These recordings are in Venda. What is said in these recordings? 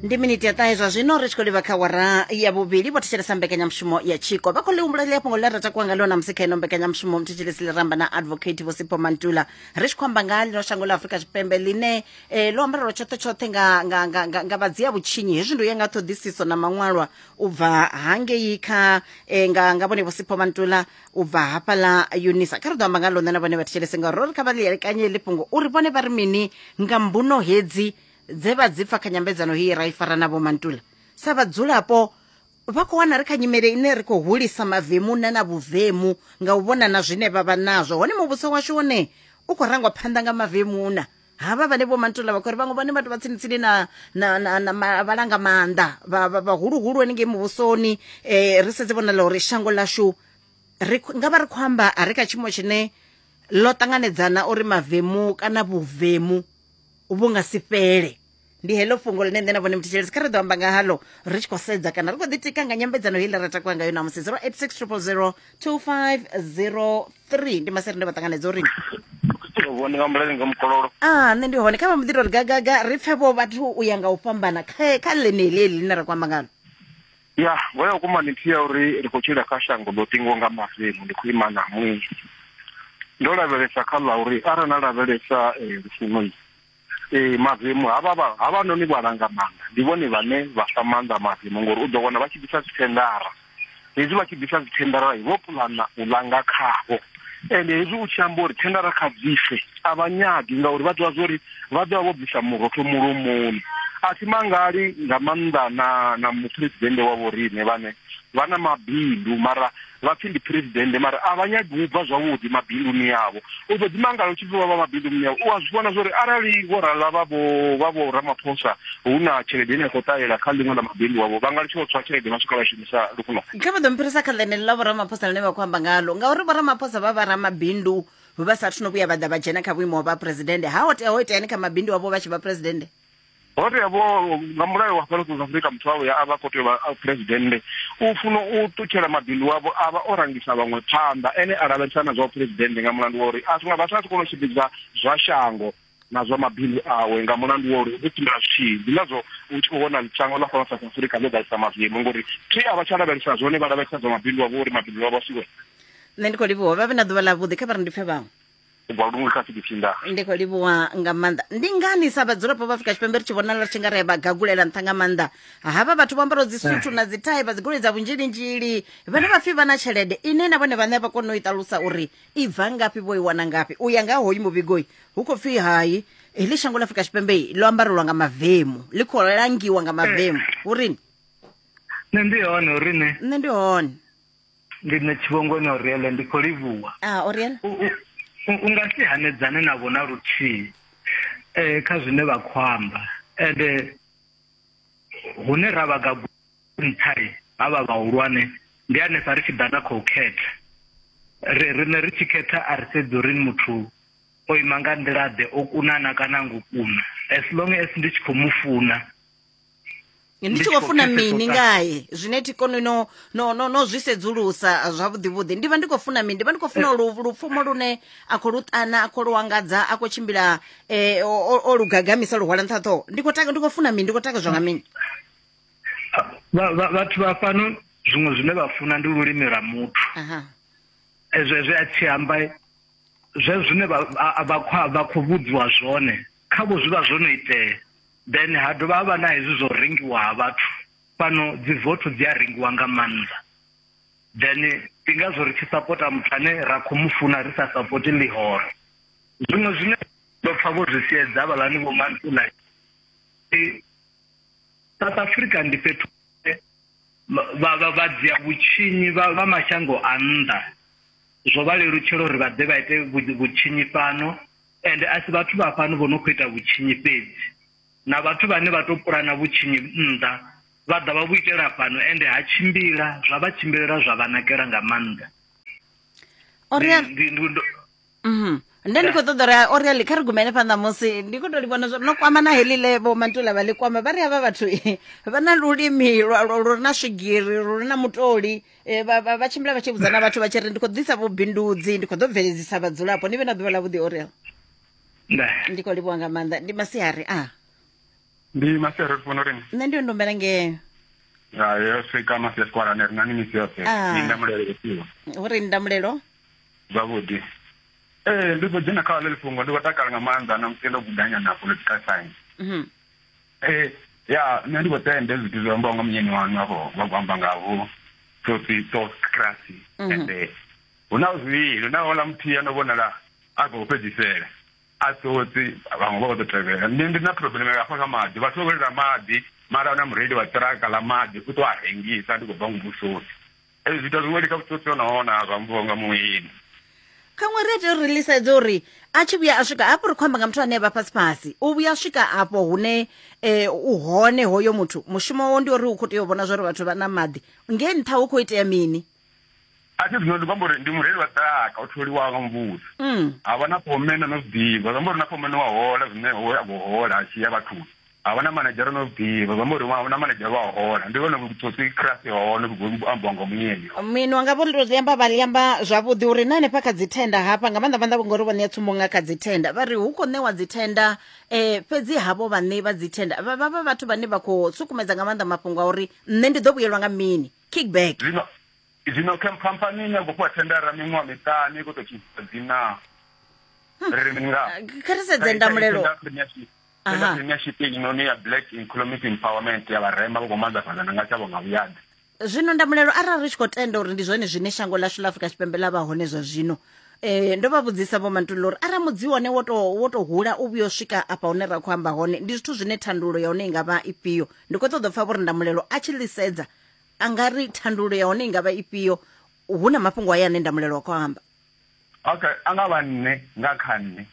ndi miniti ya ṱahe zwa zwino ri tshi khou livha kha wara ya vhuvhili vho thetshelesa mbekanyamushumo ya tshiko vha khou lihumbula ḽi afhungo ḽa ra takuwa nga ḽona musi kha ino mbekanyamushumo muthetshedzesi ḽiramba na advocate vho sipho mantula ri tshi khou amba nga ḽino shango ḽa afurika tshipembe ḽine eh, ḽo ambarelwa tshoṱhe tshoṱhe nga, nga, nga, nga, nga vhadzia vhutshinyi hezwi ndo ya nga ṱhoḓisiso na maṅwalwa u bva hangei kha eh, nga, nga vhone vho sipho mantula u bva hafhaḽa yunisa kha ri ḓo amba nga ḽone na vhone vha thetshelese ngauri ro ri kha vha ḽielekanye heḽi fhungo uri vhone vha ri mini nga mbuno hedzi dze vha dzi pfa kha nyambedzano heyi ra i fara na vhomantula sa vhadzulapo vha khou wana ri kha nyimele ine ri khou hulisa mavemu na na vhuvemu nga u vhona na zwine vha vha nazwo hone muvhuso washu wone u khou rangwa phanḓa nga mavemuna havha vhane vho mantula vha khou ri vhaṅwe vhane vhathu vha tsini-tsini na, na, na, na ma, vhalanga maanḓa vhahuluhulu hanengei muvhusoni um ri sedze vhonala uri shango lashu ri nga vha ri khou amba a ri kha tshiimo tshine ḽo ṱanganedzana uri mavemu kana vhuvemu vhu nga si fhele ndi heḽo fhungo ḽine nṋe na vhone muthishelesi kha ri ḓo amba nga halo ri tshi khou sedza kana ri khou ḓitika nga nyambedzano heiḽa ra takuwa ngayo namusi 0860002503 ndi maseri nda vha ṱanganedza uri vhone nga mbulani nga mukololo a nṋe ndi hone kha vha mbo ḓi tou ri gagaga ri pfe vho vhathu u ya nga u fhambana kha kha ḽeneḽi heḽi ḽine ra khou amba ngalo ya vho ya vhukuma ni nthihi ya uri ri khou tshila kha shango ḽo ṱingiwa nga mavemu ndi khou ima na ṅwedzi ndo lavhelesa kha ḽa uri arali na lavhelesa eh, lufuno Ee, mavemu havha vha- havhanoni vhalangamanda ndi vhone vhane vha fha maanḓa mavemu ngori u ḓo wana vha tshi ḓisa dzithendara hezwi vha tshi ḓisa dzithendara vho pulana u langa khavho ende hezwi u tshi amba uri thendara kha bvise a vha nyagi ngauri vha ḓivha zwori vha ḓovha vho bvisa murotho mulomoni a thi mangali nga maanḓa na na muphuresidennde wa vhoriṋe vhane vha na mabindu mara vha pfi ndi president mara a vha nyagi u bva zwavhuḓi mabinduni yavho u ḓo ḓimangala u tshi pfi vha vha mabinduni yavho u a zwi vhona zwori arali vho rala vha vho vha vho ramaphosa hu na tshelede ine ya khou ṱahela kha ḽiṅwe ḽa mabindu wavho vha nga litsha u tswa tshelede vha swika vha shumisa lufuno kha vha ḓo mphirisa kha ḽenele ḽa vhoramaphosa ḽine vha khou amba ngalo ngauri vhoramaphosa vha vha ramabindu vha sathu no vhuya vha ḓa vha dzhena kha vhuimo ha vha presidende ha o tea ho iteani kha mabindu avho vha tshi vha presidende ho tea vho nga mulayo wa fhano south africa muthu wawe ya a vha khou tea vha presidennde u funa u ṱutshela mabindu wavho a vha o rangisa vhaṅwe phanḓa ene a lavhelesa na zwa presidennde nga mulandu wa uri a zwinga vhathu a si kona u tshimbidza zwa shango na zwa mabindu awe nga mulandu wa uri u tshimbila zwitshii ndi ngazwo u tshi khou vhona shango ḽa fhano south africa ḽo ḓalisa mavemu ngori thi a vha tsha lavhelesa zwone vha lavhelesa zwa mabindu wavho uri mabindu wavho a siwe nṋe ndi khou livhuwa vha vhe na ḓuvha ḽa vhuḓi kha vha ri ndi pfe vhaṅwe u bva lungwe kha fidiphinda ndi khou livhuwa nga maanḓa ndi ngani sa vhadzulapo vha afrika tshipembe ri tshi vhonala ri tshi nga ri vha gagulela nṱha nga maanḓa havha vhathu vho ambaraho dzisuthu na dzithai vha dzigoloi dza vhunzhilinzhili vhane vha pfhi vha na tshelede ine na vhone vhaṋe a vha kone u i ṱalusa uri i bva ngafhi vho i wana ngafhi u ya nga ha hoyu muvhigoi hu khou pfhi hai heḽi shango ḽa afrika tshipembe ḽo ambarelwa nga mavemu ḽi khou langiwa nga mavemu hu rini nṋe ndi hone uri ne nṋe ndi hone Ndi nṋe Tshivhongoni Oriele, ndi khou livhuwa. A, Oriele. U, u, u, u nga si hanedzane navho na luthihi eh, kha zwine vha khou amba. Ende hune ra vha gagu nṱhai ha vha vhahulwane ndi hanefha ri tshi ḓa na khou khetha. Ri riṋe ri tshi khetha a ri sedzi uri ni muthu o ima nga nḓila-ḓe, o kunana kana ngo kuna. As long as ndi tshi khou mu funa, ndi tshi khou funa mini ngaye zwine thi koni no no no no zwi sedzulusa zwavhuḓi vhuḓi ndi vha ndi khou funa mini ndi vha ndi khou funa lu lupfumo lune a khou luṱana a khou luwangadza a khou tshimbila eh o lugagamisa lu hwala nṱhaṱho ndi khou taka ndi khou funa mini ndi khou takadzwa nga mini vhathu vha fhano zwiṅwe zwine vha funa ndi lulimi lwa muthu ezwo ezwo a tshi amba zwe zwine vha vha khou vhudziwa zwone khavho zwi vha zwo no itea then ha dovha ha vha na hezwi zwo rengiwa ha vhathu fhano dzi vote dzi a rengiwa nga maanḓa then ndi ngazwo ri tshi sapota muthu ane ra khou mu funa ri sa sapoti ḽihoro zwino zwine ndo pfa vho zwi siedza vhalani vho mansula south africa ndi fhethu vha dzia vhutshinyi vha mashango a nnḓa zwo vha lelutshela uri vha ḓe vha ite vhutshinyi fhano Ende a si vhathu vha fhano vho no khou ita vhutshinyi fhedzi, na vhathu vhane vha tou pulana vhutshinyi nnḓa vha ḓa vha vhu itela fhano, ende ha tshimbila zwa vha tshimbilela zwa vha nakela nga maanḓa. O ri a- Ndi- ndi- ndi- ndo- Mhm. nda ndi khou ṱoḓa uri a- o ri ali kha ri gumele phanḓa musi ndi khou tou li vhona zwa no kwama na heḽi le vho mantula vha ḽi kwama vha ri havha vhathu vha na lulimi lwa- lwa- lu re na swigiri lu re na mutoli Eh, vha- vha vha tshimbila vha tshi vhudza na vhathu vha tshi ri ndi khou ḓisa vhubindudzi ndi khou ḓo bveledzisa vhadzulapo ni vhe na ḓuvha ḽa vhuḓi orel nda ndi khou livhuwa nga maanḓa ndi masiari a ndi masiari ri funa uri ni nṋe ndi ndombela ngeo ya yo swika masi ya sikwalani ri nani misi yoṱhe Ah. ni nda mulele isiwa hu ri ndamulelo zwavhuḓi ee ndi ḓo dzhena kha ḽe lifhungo ndi khou takala nga maanḓa na musi ndo gudanya na political science Mhm. ee ya nṋe ndi khou tenda zwithu zwi ambiwa nga munyeni waṋu afho vha khou amba nga vho tsotsi tokrasi mhm. ende hu na zwivhili hu na ola muthihi ano vhonala a khou fhedzisela a tsotsi vhaṅwe vha khou ḓo tevhela nṋe ndi na problem hafha kha maḓi vhathu vha vhelela maḓi mara na mureili wa ṱiraka ḽa maḓi u ṱo a rengisa ndi khou bva muvhusoni Ee, zwiita zwiweli kha vhutsotsi ho nahone a zwa mvuwa nga muwili khaṅwe ri tea uri lisedze uri a tshi vhuya a swika hafho ri khou amba nga muthu ane vha fhasi fhasi u vhuya a swika afho hune um u hone hoyo muthu mushumo wawo ndi uri u khou tea u vhona zwa uri vhathu vha na maḓi ngei nṱha hu khou itea mini a thi zwino ndi khou amba uri ndi mureili wa ṱiraka o tholiwaho nga muvhuso mm. ha vha na phomena no zwi ḓivha zwi amba uri na phomena wa hola zwine a khou hola a tshi ya vhathuni a hu na manedzhara no ḓivha vha mbo ri hu na manedzhara wa hola ndi vhone vhuthosi khirasi wa hone vhu ambiwa nga muyeni minwa nga vho ndo amba vha amba zwavhuḓi uri na hanefha kha dzithenda hafha nga maanḓa maanḓa ngori vho ṋea tsumbo nga kha dzithenda vha ri hu khou ṋewa dzithenda um fhedzi havho vhaṋei vha dzithenda vha vha vha vhathu vhane vha khou sukumedza nga maanḓa mafhungo a uri nṋe ndi ḓo vhuyelwa nga mini kickback zwino zwino khamphani ine ya khou fhiwa thendara miṅwaha miṱani i khou tou tshisa dzina ri ri mini nga kha ri sedze ndamulelo fhedza premiership inoni ya black economic empowerment ya vharema vha khou manḓafhadza na nga tshavho nga vhuyaḓa zwino ndamulelo arali ri tshi khou tenda uri ndi zwone zwine shango lashu ḽa afrika tshipembe ḽa vha hone zwa zwino eh ndo vha vhudzisa vho mantulula uri arali mudzi wone wo tou wo tou hula u vhuya u swika afha hune ra khou amba hone ndi zwithu zwine thandululo ya hone i nga vha ifhio ndi khou ṱoḓa u pfha vho ri ndamulelo a tshi ḽisedza a nga ri thandululo ya hone i nga vha ifhio hu na mafhungo aya ane ndamulelo wa khou amba Okay, a nga vha nṋe nga kha nṋe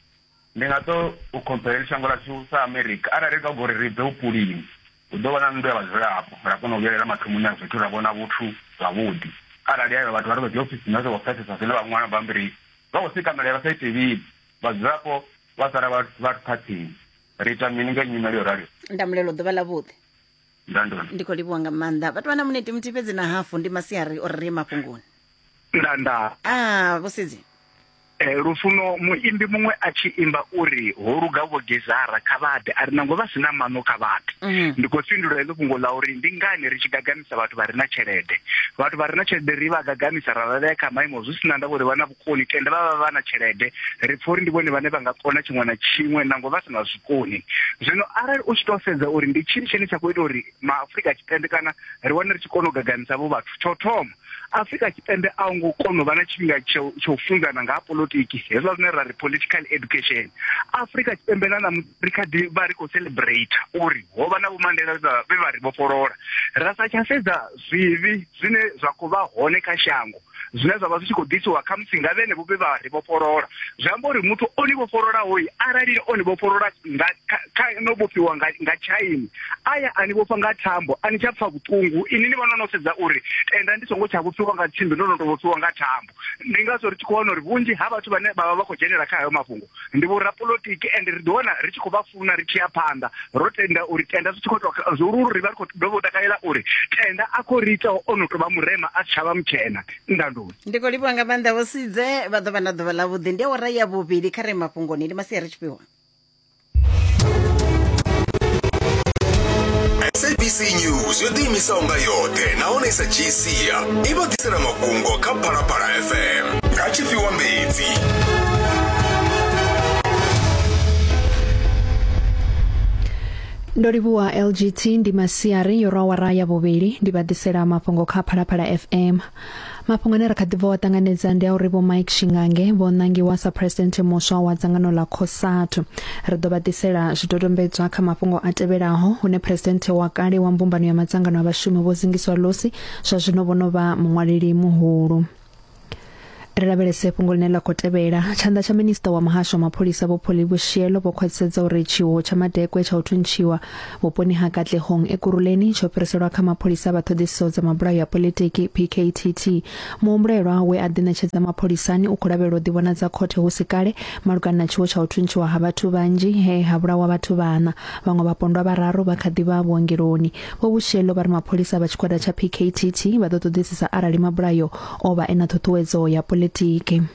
ndi nga to u khomphele shango ḽashu sa America arali ri nga gori ri bve vhupulini hu ḓo vha na nnḓu ya vhadzulapo ra kona u vhuyelela mathomoni a zwithu ra vhona vhuthu zwavhuḓi arali ayo vhathu vha ri vha dzi ofisini vha songo pfesesa zwine vha ṅwala bammbiri vha khou sika milayo vha sa ite vhili vhadzulapo vha sala vha phathini ri ita mini nga nyimele yo raliho ndamulelo ḓuvha ḽa vhuḓi ndandoni ndi khou livhuwa nga maanḓa vhathu vha na muniti muthihi fhedzi na hafu ndi masiari o ri mafhungoni ndanda ah vhusidzi e, lufuno muimbi muṅwe a tshi imba uri ho luga vho gezara kha vhaḓe a ri nango vha si na maṋo kha vhathu mhm. ndi khou fhindula heḽo fhungo ḽa uri ndi ngani ri tshi gagamisa vhathu vha re na tshelede vhathu vha re na tshelede ri vha gagamisa ra vha vhea kha maimo zwi si na ndavha uri vha na vhukoni tenda vha vha vha na tshelede ri pfa uri ndi vhone vhane vha nga kona tshiṅwe na tshiṅwe nango vha si na zwikoni zwino arali u tshi tou sedza uri ndi tshini tshine tsha khou ita uri maafurika tshipembe kana ri wane ri tshi kona u gagamisa vho vhathu tsho thoma Afrika Tshipembe a hu ngo kona u vha na tshifhinga tsha u funzana nga ha politiki hezwa zwine ra ri political education Afrika Tshipembe na ṋamusi ri kha ḓi vha ri khou celebrate uri ho vha na vho Mandela vhe vha ri vhofholola ra sa tsha sedza zwivhi zwine zwa khou vha hone kha shango zwine zwa vha zwi tshi khou ḓisiwa kha musi nga vhene vho vhe vha ri vhofholola zwi amba uri muthu o ni vhofhololaho arali o ni vhofholola nga kha no vhofhiwa nga tshaini aya a ni vhofha nga thambo a ni tsha pfa vhuṱungu ini ni vha no no sedza uri tenda ndi songo tsha vhofhiwa nga tsimbi ndo no to vhofhiwa nga thambo ndi ngazwo ri tshi khou wana uri vhunzhi ha vhathu vhane vha vha vha khou dzhenela kha hayo mafhungo ndi vhorapolotiki and ri ḓi wana ri tshi khou vha funa ri tshi ya phanḓa ro tenda uri tenda zwi tshi khou to zwihuluhulu ri vha ri khou dovha u takalela uri tenda a khou ri ita o no to vha murema a si tsha vha mutshena ndandoni ndi khou livhuwa nga maanḓa vho sidze vha ḓo vha na ḓuvha ḽavhuḓi ndi awara ya vhuvhili kha re mafhungoni ndi masiari tshifhiwa sabc news yo ḓiimisaho nga yoṱhe nahone i sa dzhii sia i vha ḓisela mafhungo kha phalaphala fm nga tshifhiwa mbedzi ndo livhuwa lgt ndi masiari yo rwa wara ya vhuvhili ndi vha ḓisela mafhungo kha phalaphala fm mafhungo ane ra kha ḓi bva wa ṱanganedza ndi a uri vho Mike Shingange vho nangiwa sa president muswa wa dzangano ḽa Cosatu ri ḓo vha ḓisela zwidodombedzwa kha mafhungo a tevhelaho hune president wa kale wa mbumbano ya madzangano a vhashumi vho zingiswa losi zwa zwino vho no vha muṅwaleli muhulu ri lavhelese fhungo ḽine ḽa khou tevhela tshanḓa tsha minista wa muhasho wa mapholisa vho Pholi Vhushielo vho khwaṱhisedza uri tshiwo tsha madekwe tsha u thuntshiwa vhuponi ha katlehong ekuruleni tsho fhiriselwa kha mapholisa vha ṱhoḓisiso dza mabulayo ya politiki pktt muhumbulelwa we a ḓiṋetshedza mapholisani u khou lavhelwa u ḓivhonadza khothe hu si kale malugana na tshiwo tsha u thuntshiwa ha vhathu vhanzhi he ha vhulawa vhathu vhana vhaṅwe vhapondwa vhararu vha kha ḓi vha vhuongeloni vho vhushelo vha ri mapholisa vha tshigwada tsha pktt vha ḓo ṱoḓisisa arali mabulayo o vha e na ṱhuṱhuwedzo ya politiki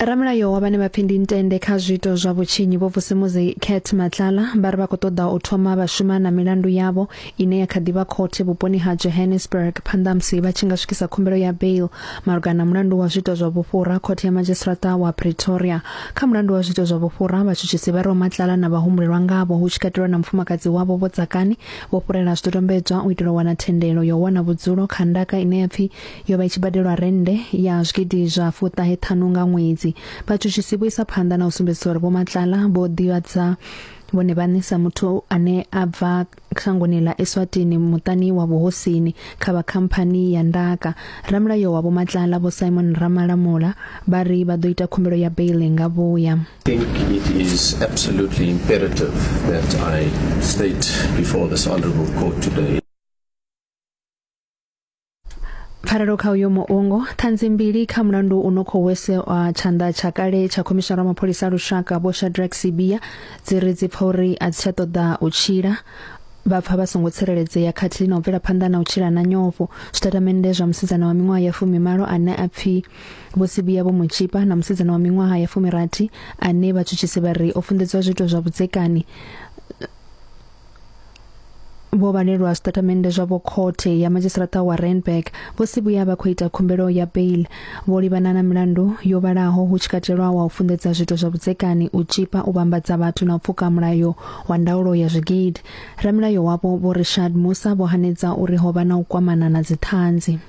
ramulayo wa vhane vha pfi ndi ntende kha zwiito zwa vhutshinyi vho vusimuzi cat matlala vha ri vha khou ṱoḓa u thoma vha shuma na milandu yavho ine ya kha ḓivha khothe vhuponi ha johannesburg phanḓa musi vha tshi nga swikisa khumbelo ya bail malugana na mulandu wa zwiito zwa vhufhura khothe ya madzhisiṱiraṱa wa pretoria kha mulandu wa zwiito zwa vhufhura vhatshutshisi vha ri matlala na vhahumbulelwa ngavho hu tshi katelwa na mufumakadzi wavho vho tsakani vho fhurela zwidodombedzwa u itela u wana thendelo ya u wana vhudzulo kha ndaka ine ya pfi yo vha i tshi badelwa rennde ya zwigidi zwa fuṱahe ṱhanu nga ṅwedzi vhatshutshisi vho isa phanḓa na u sumbedzisa uri vhomatlala vho ḓivhadza vhone vhaṋe sa muthu ane a bva shangoni ḽa eswatini muṱani wa vhuhosini kha vha khamphani ya ndaka ramulayo wa vhomatlala vho simon ramalamula vha ri vha ḓo ita khumbelo ya baili nga vhuya think it is absolutely imperative that I state before this honorable court today pfarelo kha uyo muungo ṱhanzi mbili kha mulandu u no khou wese wa tshanḓa tsha kale tsha khomishara wa mapholisa a lushaka vho shadrack sibia dzi ri dzi pfa uri a dzi tsha ṱoḓa u tshila vha pfa vha songo tsireledzea khathihi na u bvela phanḓa na u tshila na nyofho zwitatamennde zwa musidzana wa miṅwaha ya fumimalo ane a pfi vho sibia vho mutshipa na musidzana wa miṅwaha ya fumirathi ane vhatshutshisi vha ri o funḓedzwa zwiito zwa vhudzekani vho vhalelwa zwitatamennde zwavho khothe ya madzhisiṱaraṱa wa Randburg vho si vhuya vha khou ita khumbelo ya bail vho livhana na milandu yo vhalaho hu tshi katelwa wa u funḓedza zwiito zwa vhudzekani u tshipa u vhambadza vhathu na u pfuka mulayo wa ndaulo ya zwigidi ramilayo wavho vho Richard Musa vho hanedza uri ho vha na u kwamana na dziṱhanzi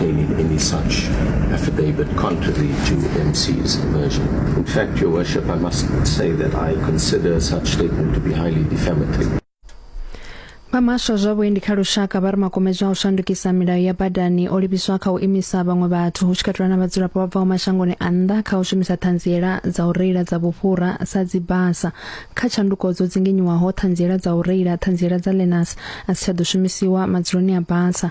any, any such affidavit contrary to MC's version. In fact, Your Worship, I must say that I consider such statement to be highly defamatory. vha muhasho zwa vhuendi kha lushaka vha ri makumedzwa a u shandukisa milayo ya badani o livhiswa kha u imisa vhaṅwe vhathu hu tshi katelwa na vhadzulapo vha bvaho mashangoni a nnḓa kha u shumisa ṱhanziela dza u reila dza vhufhura sa dzibasa kha tshanduko dzo dzinginyiwaho ṱhanziela dza u reila ṱhanziela dza lenas a si tsha ḓo shumisiwa madzuloni a basa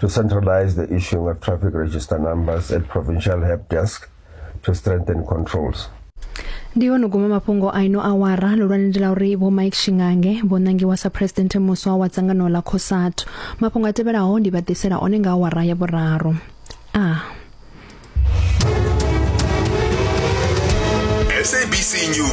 to centralize the issuing of traffic register numbers at provincial help desk to strengthen controls. ndi ho no guma mafhungo a ino awara lulwane ndi la uri vho mike shingange vho nangiwa sa phuresidennde muswa wa dzangano ḽa cosatu mafhungo a tevhelaho ndi vha ḓisela one nga awara ya vhuraru a SABC News.